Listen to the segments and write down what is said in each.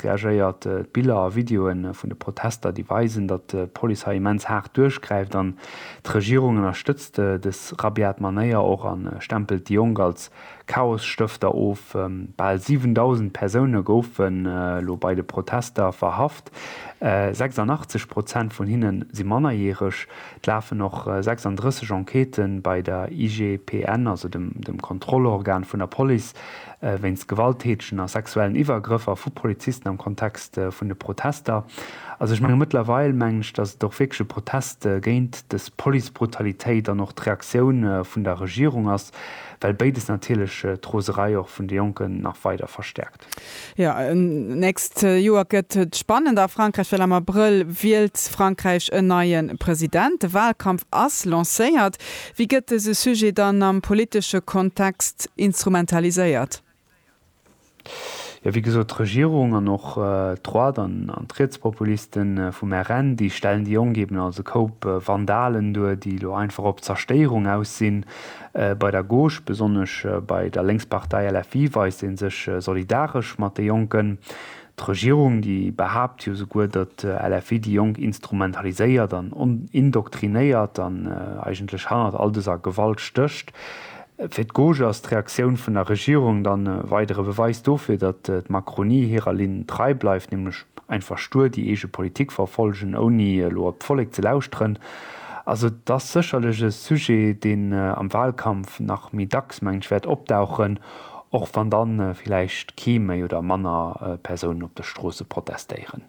Reagéiert. D'Biller a Videoe vun de Protester, déi weisen, datt d'Police hei immens haart duerchgräift an d'Regierung ënnerstëtzt dës rabiat Manéier och a stempelt déi Jonk als Chaosstëfter of. Bal 7.000 Persoune goufen elo bei de Protester verhaft, 86 Prozent vun hinne si Mannerjäreg. Et lafen och 36 Enquêten bei der IGPN, also dem Kontrollorgan vun der Police. wéinst Gewalttätegen a sexuellen Iwwergrëffer vu Polizisten am Kontext vun de Protester. Also ech menge mëttlerweil, mengen ech, datt et och wierklech e Protest géint dës Policebrutalitéit an och d'Reaktioun vun der Regierung ass, well béides natierlech d'Roserei och vun de Jonken nach weider verstäerkt. Jo, nächst Joer gëtt et spannend a Frankräich, well am Abrëll wielt Frankräich en neie President. De Walkampf ass lancéiert. Wéi gëtt dëse Sujet dann am politesche Kontext instrumentaliséiert? Jo, wéi gesot, d'Regierung an och d'Droite an d'Rietspopuliste vum RN, déi stellen déi Jonk eben als e Koup Vandalen duer, déi elo einfach op Zerstéierung aus sinn. Bei der Gauche, besonnesch bei der Lénkspartei LFI, weist ee sech solidaresch mat de Jonken. D'Regierung, déi behaapt jo souguer, datt d'LFI déi Jonk instrumentaliséiert an indoktrinéiert an eigentlech hannert all dëser Gewalt stécht. Fir d'Gauche ass d'Reaktioun vun der Regierung dann e weidere Beweis dofir, datt d'Macronie hirer Linn trei bleift, nämlech einfach stur déi eege Politik verfollegen, ouni elo op d'Vollek ze lauschteren. Also et ass sécherlech e Sujet, deen am Wahlkampf nach méi dacks, mengen ech, wäert opdauchen. Och wann dann villäicht kee méi oder manner Persounen op de Stroossen protestéieren.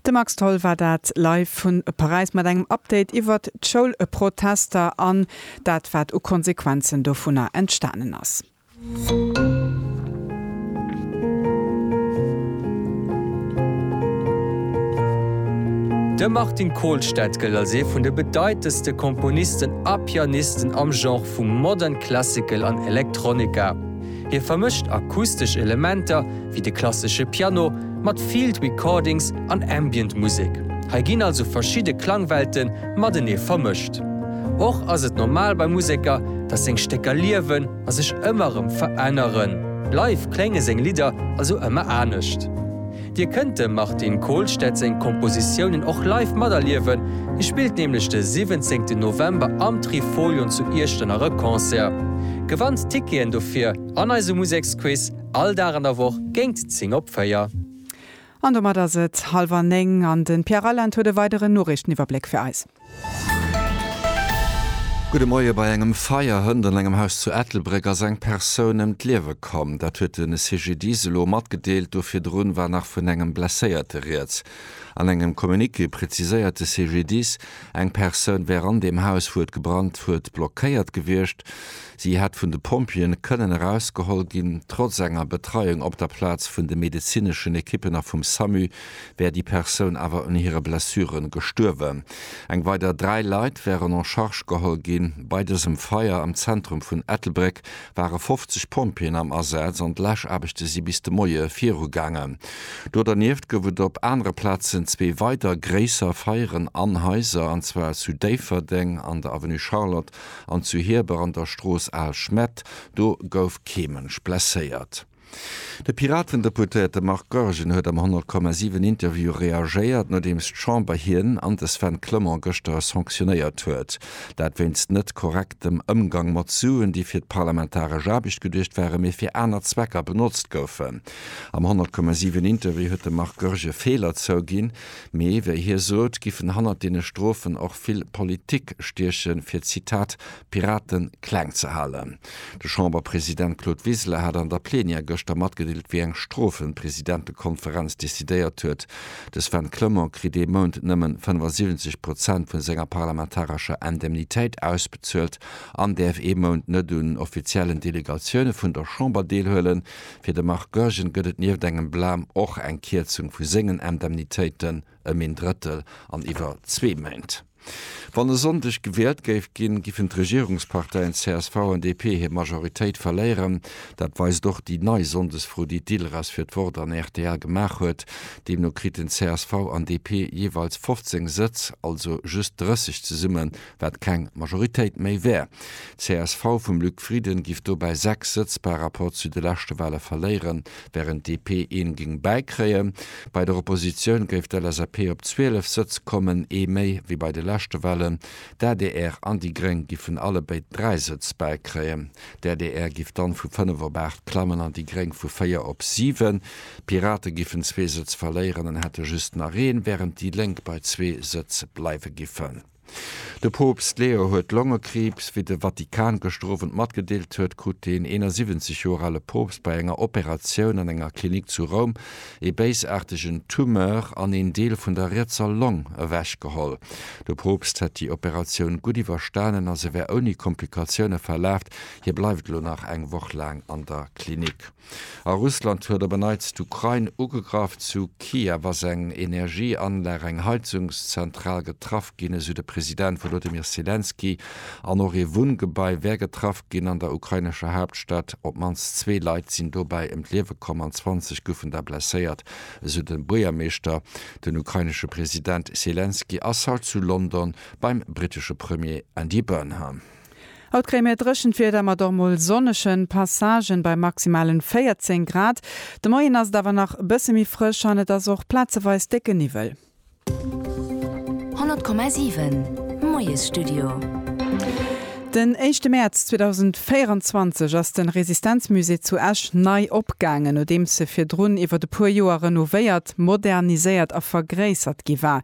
De Max Tholl war dat live vun Paräis mat engem Update iwwert d'Schoulprotester an dat wat u Konsequenzen dovunner entstanen ass. De Martin Kohlstedt gëllt als ee vun de bedeitendste Komponisten a Pianisten am Genre vun der vu Modern Classical an Electronica. Hie vermëscht akustesch Elementer, wéi de klassesche Piano, mat Field Recordings an Ambient Musek. Hei ginn also verschidde Klangwelte matenee vermëscht. Och ass et normal bei Museker, datt seng Stécker liewen a sech ëmmer erëm veränneren. Live klénge seng Lidder also ëmmer anescht. Dir kënnt dem Martin Kohlstedt seng Kompositiounen och live materliewen, hie spillt nämlech de 17 November am Trifolion zu Iechternach e Concert. Gewannt d'Ticketen dofir an eisem Museksquiz, all Dag an der Woch géingt 10 op 4. An domat ass et halwer néng an de Pierre Reyland huet e weideren Noriichteniwwerbléck fir eis. Gudde Moie, Bei engem Feier hënt an engem Haus zu Ettelbréck ass eng Persoun ëm d'Liewe komm. Dat huet de CGDIS elo matgedeelt. Do virdrun war nach vun engem Blesséierte rieds. An engem Communiqué preziséiert de CGDIS, eng Persoun wär an deem Haus, wou et gebrannt huet, blockéiert gewiescht. Si hätt vun de Pompjeeë kënnen erausgeholl ginn. Trotz enger Betreiung op der Plaz vun de medezineschen Ekippen a vum Samu wär déi Persoun awer un hire Blessure gestuerwen. Eng weider dräi Leit wären en charge geholl ginn. Bei dësem Feier am Zentrum vun Ettelbréck ware 50 Pompjeeën am Asaz an d'Läschaarbechte si bis de Moie virugaangen. Do dernieft gouf et op anere Plazen zwee weider gréisser Feieren an Haiser, an zwar zu Déifferdeng an der Avenue Charlotte an zu Hieber an der Strooss Al Schmett. Do gouf kee Mënsch blesséiert. De Piraten-Deputéierte Marc Goergen huet am 100,7 Interview reagéiert, nodeems d'Chamber hien an de Sven Clement gëschter sanctionéiert huet. Dat wéinst net korrektem Ëmgang mat Suen, déi fir d'parlamentaresch Aarbecht geduecht waren, mee fir aner Zwecker benotzt goufen. Am 100,7 Interview huet de Marc Goergen Feeler zouginn, mee wéi hie sot, giffen hannert deene Strofen och vill Politik stiechen, fir, Zitat, d'Piraten kleng ze halen. De Chamberpresident Claude Wiseler hat an der Plenière gëschter matgedeelt, wéi eng Strofen d'Presidentekonferenz decidéiert huet. De Sven Clement kritt ee Mount nëmmen 75 Prozent vun senger parlamentarescher Indemnitéit ausbezuelt an däerf ee Mount net un offiziellen Delegatioune vun der Chamber deelhuelen. Fir de Marc Goergen gëtt et nieft engem Blam och eng Kierzung vu sengen Indemnitéiten. ëm een Drëttel an iwwer zwee Méint. Wann e Sonndeg gewielt géif ginn, giffen d'Regierungsparteien csv an DP hir Majoritéit verléieren. Dat weist och déi nei Sonndesfro, déi d'ILRAS fir d'Wort an rtl gemaach huet. Deemno kriten csv an DP jeeweils 15 Sëtz, also just 30 zesumme wat keng Majoritéit méi wär. Csv vum Luc Frieden giff dobäi 6 Sëtz par Rapport zu de leschte Wahle verléieren, während DP een géing bäikréien. Bei der Oppositioun géif d'LSAP op 12 Sëtz kommen, ee méi wéi bei de leschte Wahlen. D'adr an déi Gréng giffen allebéid 3 Sëtz bäikréien. D'adr giff dann vu 5 op 8 klammen an déi Gréng vu 4 op 7. D'Pirate giffen zwee Sëtz verléieren an hätte just nach een, während déi Lénk bei zwee Sëtz bleiwe giffen. De Poopst Leo huet Longekriibs. Wéi de Vatikan gëschter Owend matgedeelt huet, krut deen 71 Joer ale Poopst bei enger Operatioun an enger Klinik zu Roum ee béisaartegen Tumeur an een Deel vun der rietser Long ewechgeholl. De Poopst hätt déi Operatioun gutt iwwerstanen a se wär ouni Komplikatioune verlaf. Hie bleift elo nach eng Woch laang an der Klinik. A Russland huet op en Neits d'Ukrain ugegraff. Zu Kiew ass eng Energieanlag, eng Heizungszentral, getraff ginn, esou de President Wolodymyr Selenskyj. An och ee Wunngebai wär getraff ginn. An der ukrainescher Haaptstad op d'mannst zwee Leit sinn dobäi ëm d'Liewe komm an 20 goufen der blesséiert, esou de Buergermeeschter. Den ukrainesche President Selenskyj ass haut zu London beim brittesche Premier Andy Burnham. Haut kréie mir dréchent Wieder mat och mol sonnege Passagen bei maximalen 14 Grad. De Moien ass et awer nach e bësse méi frësch an et ass och plazeweis décke Niwwel. 100,7 Moiesstudio. Den éischte Mäerz 2024 ass de Resistenzmusée zu Esch nei opgaangen, nodeems e virdrun iwwert e puer Joer renovéiert, moderniséiert a vergréissert gi war.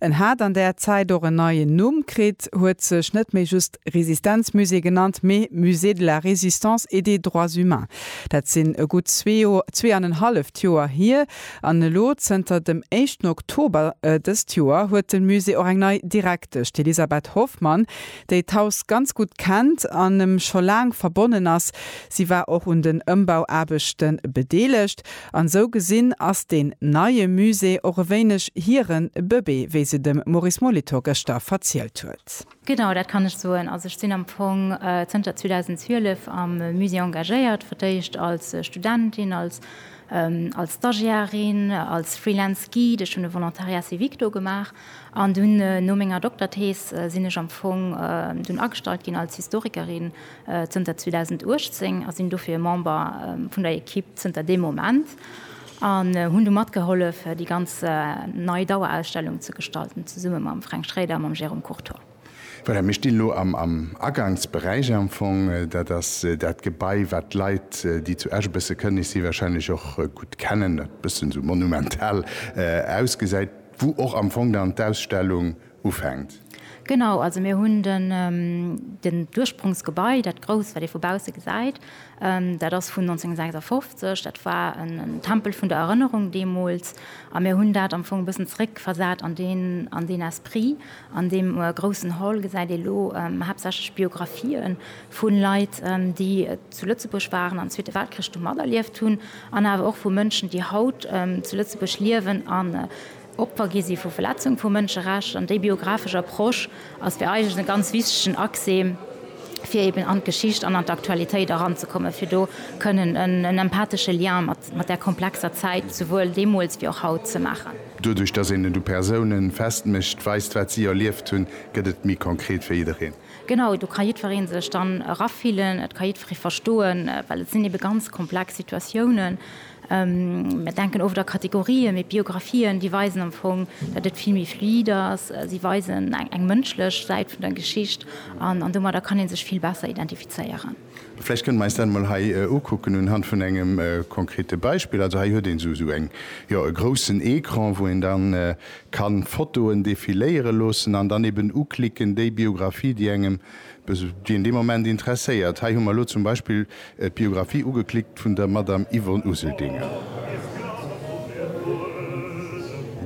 En hat an där Zäit och en neien Numm kritt, huet sech net méi just Resistenzmusée genannt, mee Musée de la Résistance et des Droits Humains. Dat sinn e gutt zwee an en halleft Joer hier. An elo, zënter dem éischten Oktober dëst Joer, huet de Musée och eng nei Direktesch, d'Elisabeth Hoffmann, déi d'Haus ganz gutt kennt an em scho laang verbonnen ass, si war och un den Ëmbauaarbechte bedeelegt an esou gesinn ass deen neie Musée och e wéineg hire Bëbee, wéi se de Maurice Molitor gëschter verzielt huet. Genau, dat kann ech soen. Also ech sinn am Fong zënter 2012 am Musée engagéiert, fir d'éischt als Studentin, als als Stagiairin, als Freelance Guide, ech hunn e Volontariat civique do gemaach, An dunn, no menger Dokterthees, sinn ech am Fong dunn agestallt ginn als Historikerin zënter 2018 a sinn dofir Member vun der Ekipp zënter deem Moment an hunn du matgehollef, déi ganz nei Dauerausstellung ze gestalten, zesumme mam Fränk Schraeder a mam Jérôme Courtois. Voilà, mir stinn elo am Agangsberäich am Fong. Dat ass dat Gebai, wat d'Leit, déi zu Esch e bësse kënnen, ici wahrscheinlech och gutt kennen, dat e bëssen esou monumental ausgesäit, wou och am Fong dann d'Ausstellung ufänkt. Genau, also mir hunn den d'Ursprongsgebai, dat grousst, wat ee vu bausse gesäit, dat ass vun 1956. Dat war en Tempel vun der Erënnerung deemools. A mir hunn dat am Fong e bëssen zeréckversat an deen Esprit. An deem groussen Hall gesäit ee lo haaptsächlech Biographien vu Leit, déi zu Lëtzebuerg waren an Zweete Weltkrich do materlieft hunn, an awer och vu Mënschen, déi haut zu Lëtzebuerg liewen an Opfer gi si vu Verletzung vu Mënscherechter. An déi biographesch Approche ass fir eigentlech e ganz wichtegen Accès, fir eben an d'Geschicht an an d'Aktualitéit eranzekommen, fir do kënnen en empathesche Lien mat där komplexer Zäit, souwuel deemools wéi och haut, ze maachen. Doduerch, dass een et u Persoune festmécht, weist, wat si erlieft hunn, gëtt et méi konkret fir jiddereen. Genau, do ka jiddweree sech dann erafillen, et ka jiddweree verstoen, well et sinn ebe ganz komplex Situatiounen. Mir denken oft a Kategorien, mee d'Biographien, déi weisen am Fong, datt et vill méi fluid ass. Si weisen eng mënschlech Säit vun der Geschicht an domadder kann ee sech vill besser identifizéieren. Vläicht kënnen mer eis dat emol hei ukucken unhand vun engem konkrete Beispill. Also hei huet een esou eng, jo, e groussen Ecran, wou een da kann d'Fotoen defiléiere loossen an dann eben uklicken, déi Biographie, déi engem, déi een dee Moment interesséiert. Hei hu mer elo zum Beispill d'Biographie ugeklickt vun der Madame Yvonne Useldinger.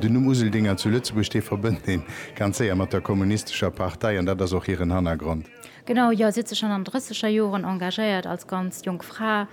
Den Numm Useldinger zu Lëtzebuerg, dee verbënnt ee ganz séier mat der kommunistescher Partei an dat ass och hiren Hannergrond. Genau, jo, si huet sech schonn an de drësseger Joren engagéiert als ganz jonk Fra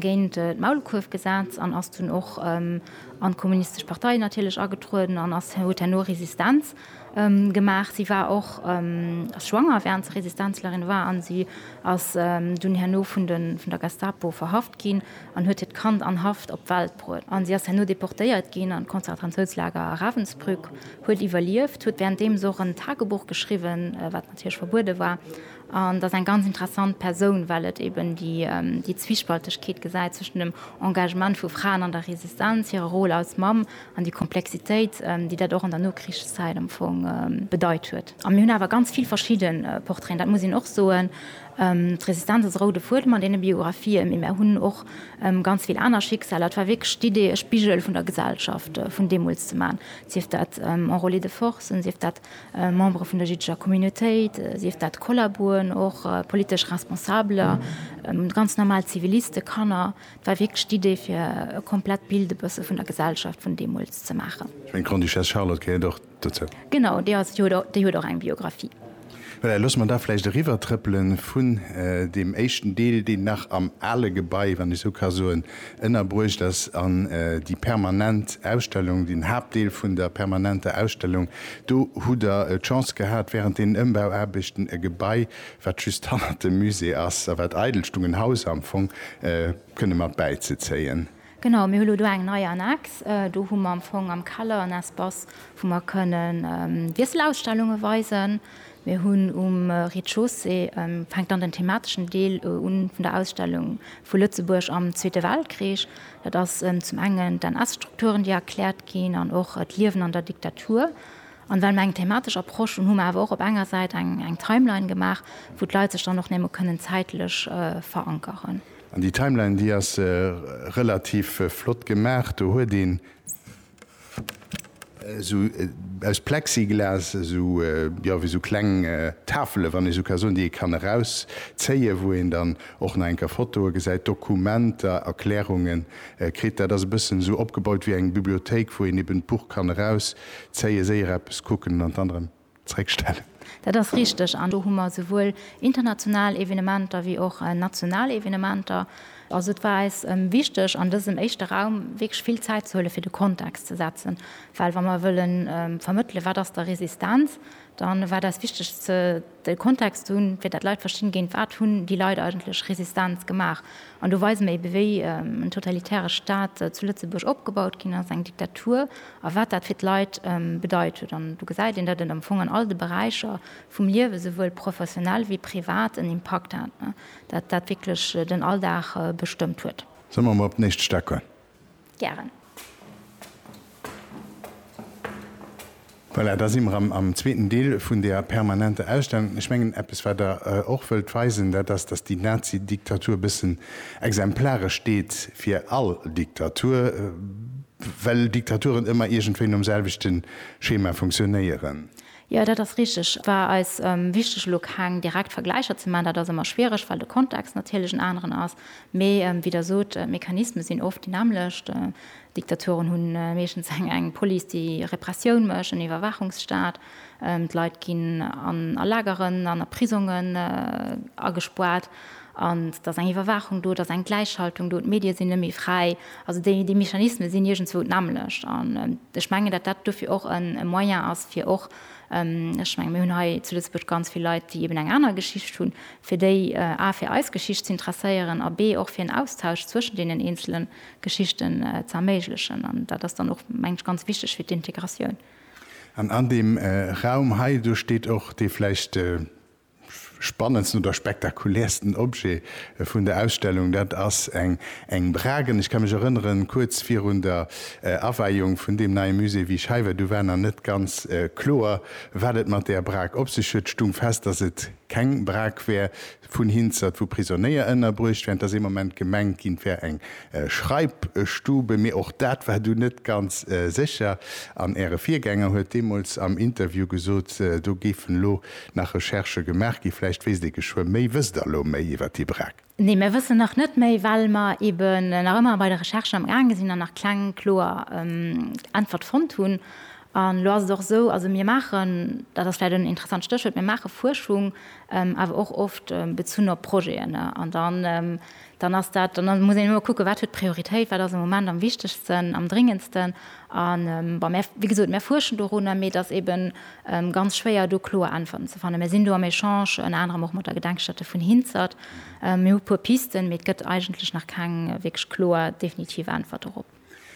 géint d'Maulkuerfgesetz an ass dunn och an d'Kommunistesch Partei natierlech agetrueden an ass huet herno Resistenz gemaach. Si war och ass schwanger, wärend se Resistenzlerin war an si ass dunn herno vun de vun der Gestapo verhaft ginn an huet hiert Kand an Haft op d'Welt bruet. An si ass herno deportéiert ginn an d'Konzertranzouslager Ravensbrück, huet iwwerlieft, huet wärenddeems och en Tagebuch geschriwwen, wat. Hirsch verbuede war, an dass eng ganz interessant Persoun, well et eben déi Zwispaltegkeet gesäit zwëschen dem Engagement vu Fraen an der Resistenz, hire Rôle als Mamm an déi Komplexitéit, déi dat och an der Nokrichszäit am Fong bedeit huet. A mir hunn awer ganz vill verschidde Portraiten, dat muss een och soen. D'Resistenz ass e roude Fuedem an deene Biografië, mee mir hunn och ganz vill aner Schicksaler. Et war wierklech d'Idee, e Spigel vun der Gesellschaft vun deemools ze maachen, sief dat Enrôlés de force, sief dat Membere vun der jiddescher Communautéit, sief dat Kollaboen, och politesch Responsabeler, ganz normal Zivilisten, Kanner. Et war wierklech d'Idee, fir e komplett Bild e bësse vun der Gesellschaft vun deemools ze maachen. Ech mengen, d'Grande-Duchesse Charlotte gehéiert och dozou. Genau, déi ass, déi huet och eng Biographie. Voilà, loosse mer da vläicht eriwwertrëppele vun deem éischten Deel, deen nach am ale Gebai, wann ech esou ka soen, Ënnerbruecht ass an déi permanent Ausstellung, den Haaptdeel vun der permanenter Ausstellung. Do hutt Der d'Chance gehat, während deenen Ëmbauaarbechten e Gebai, wat just hannert dem Musée ass a wat eidel stung, en Haus am Fong, kënne mat bäizezéien. Genau, mir hu lo do eng nei Annex. Do hu mer am Fong am Keller en Espace, wou mer kënnen Wiesselausstellunge weisen. Mir hunn um Rez-de-chaussée, fänkt dann den themateschen Deel un vun der Ausstellung, vu Lëtzebuerg am Zweete Weltkrich. Dat ass zum engen d'NS-Strukturen, déi erkläert ginn an och d'Liewen an der Diktatur. An well mer eng thematesch Approche hunn, hu mer awer och op enger Säit eng Timeline gemaach, wou d'Leit sech dann och némme kënnen zäitlech verankeren. An déi Timeline, déi ass relativ flott gemaach. Do huet een. esou aus Plexiglas, esou jo wéi esou kleng Tafele wann ee sou ka soen, déi ee kann erauszéie wou een dann och nach eng Kéier Fotoe gesäit, Dokumenter, Erklärunge kritt. Dat ass e bëssen esou opgebaut wéi eng Bibliothéik wou een eben d'Buch kann erauszéie, séier eppes kucken an dann erëm. zréckstellen. Dat ass richteg an do hu mer esouwuel international Evenementer wéi och national Evenementer. Also et war eis wichteg an dësem éischte Raum wierklech vill Zäit ze huele fir de Kontext ze setzen, well wa mer wëlle vermëttele wat ass da Resistenz, da war et eis wichteg de Kontext ze hunn, fir dat d'Leit verstinn, géint wat hunn déi Leit eigentlech Resistenz gemaach. An do weise mer eebe wéi en totalitäre Staat zu Lëtzebuerg opgebaut ginn ass, eng Diktatur a wat dat fir d'Leit bedeit huet. An do gesäit een, datt et am Fong an all de Beräicher vum Liewe, souwuel professionell wéi privat, en Impakt hat, datt dat wierklech den Alldag bestëmmt huet. Solle mer emol op den éischte Stack goen? Gären. Voilà, da si mer am zweeten Deel vun där permanenter Ausstellung. Ech mengen, eppes, wat Der och wëllt weisen, dat ass, datt déi Nazi-Diktatur e bëssen exemplaresch steet fir all Diktatur. Well Diktaturen ëmmer iergendwéi nom selwechte Schema funktionéieren. Jo, dat ass richteg. Et war eis wichteg, elo keng direkt Vergläicher ze man. Dat ass ëmmer schwiereg, well de Kontext natierlech en aneren ass. Mee wéi Der sot, d'Mechanisme sinn oft déi nämmlecht. Diktaturen hu meeschtens eng Police, déi Repressioun mécht, en Iwwerwaachungsstaat. D'Leit ginn a Lageren an a Prisongen agespaart. An et ass eng Iwwerwaachung do, et ass eng Gläichschaltung do, d'Medie sinn net méi fräi. Also déi Mechanisme sinn iergendzwou d'nämmlecht. An ech mengen, datt dat dofir och e Moyen ass, fir och, ech menge mir hunn hei zu Lëtzebuerg ganz vill Leit, déi eben eng aner Geschicht hunn, fir déi a fir eis Geschicht z'intresséieren a b och fir en Austausch zwëschen deenen eenzele Geschichten ze erméiglechen. An dat ass dann och, meng ech, ganz wichteg fir d'Integratioun. An an deem Raum hei, do steet och dee vläicht, spannendsten oder spektakulärsten Objet vun der Ausstellung, dat ass eng eng Bragen. Ech ka mech erënneren, kuerz virun der Aweiung vun deem neie Musée, wéi ech hei war, du war nach net ganz kloer, wat et mat där Brag op sech huet, stoung fest, dass et keng Brag wär vun Hinzert, wou Prisonnéier ënnerbruecht wären. Et ass ee Moment gemengt ginn, et wär eng Schreibstube, mee och dat war dunn net ganz sécher. An Äre Virgänger huet deemools am Interview gesot, do géifen elo Nach Recherchë gemaach gi? Vläicht wéisst ee geschwë méi. Wësst Der elo méi iwwer d'IBRAC? Nee, mir wëssen nach net méi, well mer eben nach ëmmer bei de Recherchen am gaange sinn an nach keng kloer Äntwert fonnt hunn. An elo ass et och esou, also mir maachen, dat ass vläicht en interessant Stéchwuert, mir maache Fuerschung, awer och oft bezunn op Projeten. An da dann ass dat, dann muss een ëmmer kucken, wat huet Prioritéit, wat ass am Moment am wichtegsten, am dringendsten. A bon, mär, wéi gesot, mär fuerschen dorunner, mee et ass eeben ganz schwéier, do kloer Äntwerten ze fannen. Mär sinn do am Echange, ënner anerem och mat der Gedenkstätte vun Hinzert. Mir hu puer Pisten, mee et gëtt eigentlech nach keng wierklech kloer, definitiv Äntwert dorop.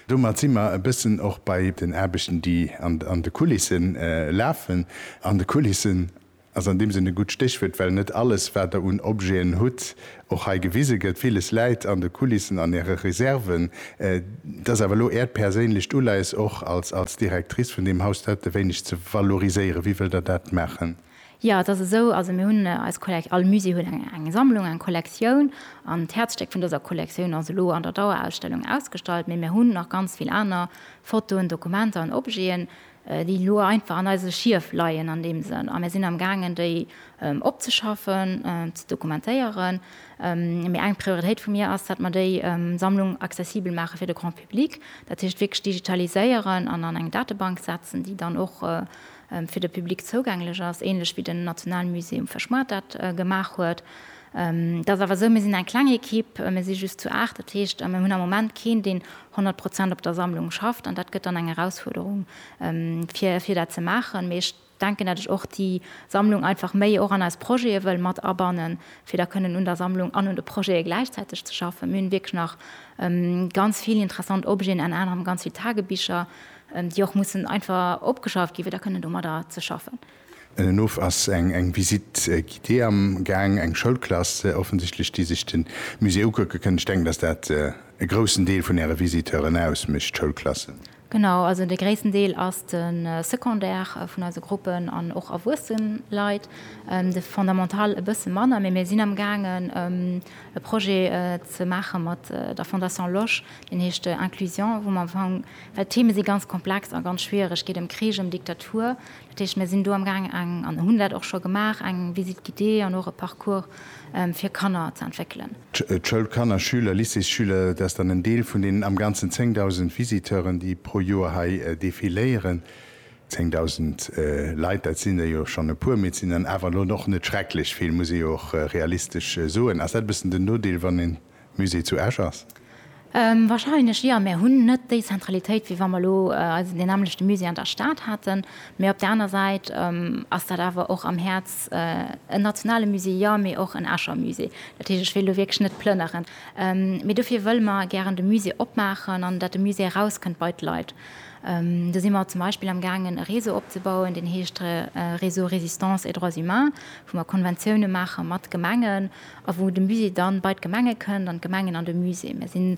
Domat si mer e bëssen och bei den Aarbechten, déi an de Kulissen lafen. An de Kulissen ass an deem Sënn e gutt Stéchwuert, well net alles, wat Der un Objeten hutt, och hei gewise gëtt. Villes läit an de Kulissen, an Äre Reserven. Et ass awer elo Äert perséinlecht Uleies, och als Directrice vun deem Haus, dat e wéineg ze valoriséieren. Wéi wëllt Der dat maachen? Jo, et ass esou, also mir hunn eis Kollekt, all Musée huet eng Sammlung, eng Kollektioun, an d'Häerzstéck vun dëser Kollektioun ass elo an der Dauerausstellung ausgestallt, mee mir hunn nach ganz vill aner Fotoen, Dokumenter an Objeten, déi elo einfach an eise Schief leien an deem Sënn, a mir sinn am gaangen déi opzeschaffen, ze dokumentéieren, mee eng Prioritéit vu mir ass, datt mer déi Sammlung accessibel maache fir de Grand public, dat heescht wierklech digitaliséieren an an eng Datebank setzen, déi dann och fir de Public zougänglech ass, ähnlech wéi den Nationalmusée um Verschmart dat gemaach huet. Et ass awer esou, mir sinn eng kleng Ekipp, mir si just zu aacht, dat heescht, mir hunn am Moment keen, deen honnert Prozent op der Sammlung schafft an dat gëtt dann eng Erausfuerderung, fir dat ze maachen. Mee ech denken, dat ech och déi Sammlung einfach méi och an eis Projete wëll mat abannen, fir da kënnen un der Sammlung an un de Projete gläichzäiteg ze schaffen. Mir hunn wierklech nach ganz vill interessant Objeten, enner anerem ganz vill Tagebicher, déi och mussen einfach opgeschafft ginn, fir da kënnen domadder ze schaffen. Ënnenof ass eng Visite guidée am Gaang, eng Schoulklass offensichtlech, déi sech de Musée ukucke kënn. Ech denken, dass dat e groussen Deel vun Äre Visiteuren ausmécht, d'Schoulklassen. Genau, also de gréissten Deel ass de Secondaire vun eise Gruppen an och erwuessen Leit, de Fondamental e bësse manner. Mee mir sinn am Gaangen e Projet ze maache mat der Fondation Losch, deen heescht Inclusion, wou mer am Fong, well d'Theme si ganz komplex a ganz schwiereg, geet ëm Krich, ëm Diktatur, Dat heescht, mir sinn do amgaang eng, an hunn dat och scho gemaach, eng Visite guidée an och e Parcours fir Kanner ze entwéckelen. D'Schoulkanner, Schüler, Lycéesschüler, dat ass dann en Deel vun deenen am Ganzen 10.000 Visiteuren, déi pro Joer hei defiléieren. 10.000 Leit, dat sinn der jo schonn e puer, mee et sinn dann awer elo och net schrecklech vill, muss ee jo och realistesch soen. Ass dat e bëssen den Nodeel, wann een Musée zu Esch ass? Wahrscheinlech jo. Mir hunn net déi Zentralitéit, wéi wa mer elo eisen deen nämmlechte Musée an der Stad haten. Mee op der aner Säit ass dat awer och am Häerz en nationale Musée, jo, mee och en Escher Musée. Dat heescht, ech wéilt elo wierklech net plënneren. Mee dofir wëlle mer gären de Musée opmaachen an datt de Musée erauskënnt bei d'Leit. Do si mer zum Beispill am gaangen e Réseau opzebauen, deen heescht Réseau Résistance et droits humains, wou mer Konventioune maache mat Gemengen, A wou de Musée dann bei d'Gemenge kënnt an d'Gemengen an de Musée. Mir sinn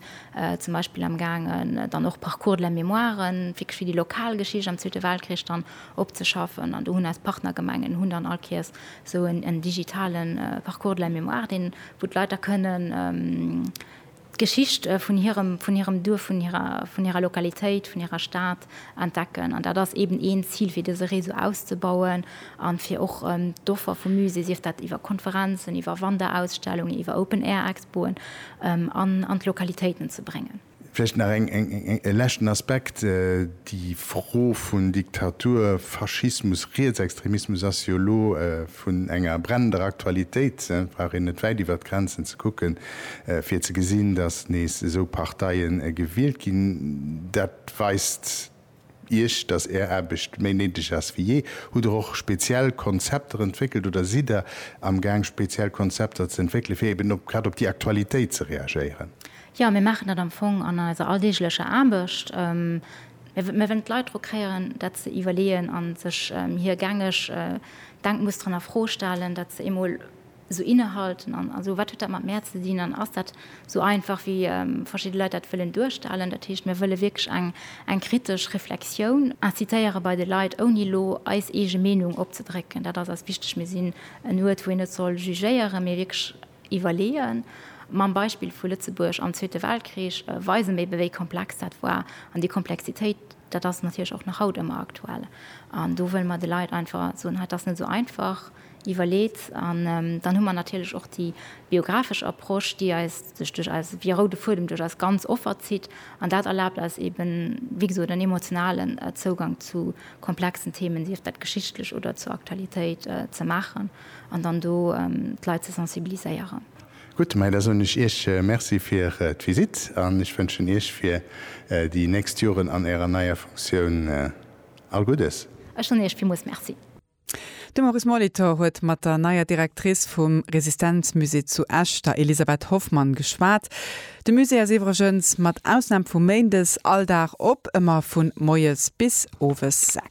zum Beispill am gaangen dann och Parcours de la mémoire wierklech fir déi lokal Geschicht am Zweete Weltkrich dann opzeschaffen. An do hunn eis Partnergemengen hunn dann all Kéiers esou en digitale Parcours de la mémoire, deen, wou d'Leit da kënnen, d'Geschicht vun hirem, vun hirem Duerf, vun hirer, vun hirer Lokalitéit, vun hirer Stad entdecken. An dat ass eeben een Zil, fir dëse Réseau auszebauen an fir och d'Offer vum Musée, sief dat iwwer Konferenzen, iwwer Wanderausstellungen, iwwer Open-Air-Expoen, an, an d'Lokalitéiten ze bréngen. Vläicht nach eng, eng, eng, e leschten Aspekt, Déi Fro vun Diktatur, Faschismus, Rietsextremismus ass jo elo Vun enger brennender Aktualitéit brauch een net wäit iwwert d'Grenzen ze kucke fir ze gesinn, datt nees esou Parteie gewielt ginn. Dat weist Iech, datt Är Aarbecht méi néideg ass wéi jee. Hutt Der och speziell Konzepter entwéckelt oder sidd Der am Gaang speziell Konzepter ze entwéckele fir eben grad op déi Aktualitéit ze reagéieren? Jo, mir maachen dat am Fong an eiser alldeeglecher Aarbecht. Mir wëllen d'Leit dru kréien, dat ze iwwerleeën a sech hir gängeg Denkmusteren a Fro stellen, dat ze eemol esou innehalten an esou, Wat huet dat mat mär ze dinn an ass dat esou einfach, wéi verschidde Leit dat wëllen duerstellen? Dat heescht, mir wëlle wierklech eng kritesch Reflexioun incitéiere bei de Leit, ouni elo eis eege Meenung opzedrécken. Dat ass eis wichteg. Mir sinn en Uert, wou een net soll jugéieren, mee wierklech. Iwwerleeën. Mam Beispill vu Lëtzebuerg am Zweete Weltkrich weise mir eben, wéi komplex dat war. An déi Komplexitéit, dat ass natierlech och nach haut ëmmer aktuell. An do wëlle mer de Leit einfach soen, dat ass net esou einfach, iwwerleet. An dann hu mer natierlech och déi biographesch Approche, déi eis, sech duerch eis, wéi e roude Fuedem duerch eis ganz Offer zitt. An dat erlaabt eis eben, wéi gesot, en emotionalen Zougang zu komplexen Themen, sief dat geschichtlech oder zur Aktualitéit, ze maachen. an dann do d'Leit ze sensibiliséieren. Gutt, mä da soen ech Iech Merci fir d'Visitt an ech wënschen Iech fir déi nächst Joren an Ärer neier Funktioun all Guddes. Ech soen Iech villmools Merci. De Maurice Molitor huet mat der neier Directrice vum Resistenzmusée zu Esch, der Elisabeth Hoffmann, geschwat. De Musée ass iwwregens, mat Ausnam vu méindes, all Dag op, ëmmer vu moies bis owes 6.